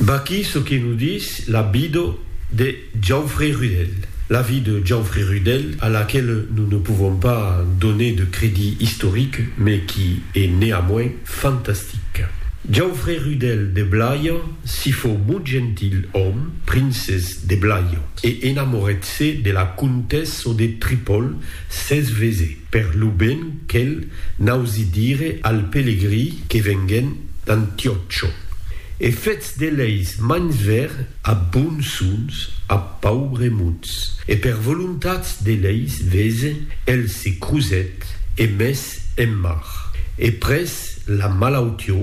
Vaquí çò que nos dis la vida de Jaufery Rudel. La vie de Jaufery Rudel, a laquela nos ne pouvons pas doner de crédit historique, mais qui est néanmoins fantastique. Jaufery Rudel de Blayan si fou mot gentil òme, princes de Blayan, e enamoret-se de la comtessa de Tripol, S'es vese per lo ben quel n'ausi dire al pelegrí que venguèn d'Antiòcho, e fetz de leis mans ver a bonsons a paubres muts, e per volontats de leis vese el se crusèt e mes en mar, e pres la malautió,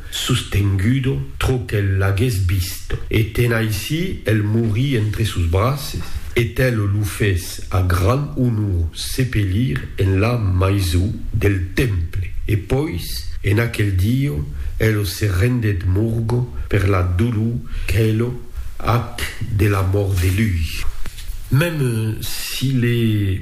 sostengudo, trò qu'el l'aguès visto, e tenaicí el morí entre sos braces, e tel lo fes a gran onor sepelir en la maiso del temple, e pois en aquel diò el se rendèt morgo per la dolor qu'el ac de la mòrt de lui. Mèm si le.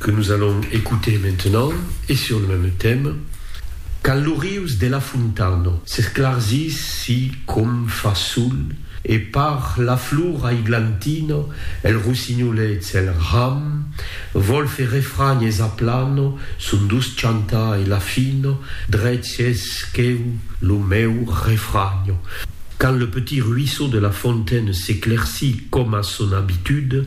que nos allons écouter maintenant e sur le même thème, quand lo rius de la Fontana s'esclargís si com fa sol e par la flor aiglantina el rossinholets el ram vòl fer refranh es aplana son doç chantar e la fina drech es queu lo meu refranh quand le petit ruisseau de la fontaine s'éclaircit coma son habitude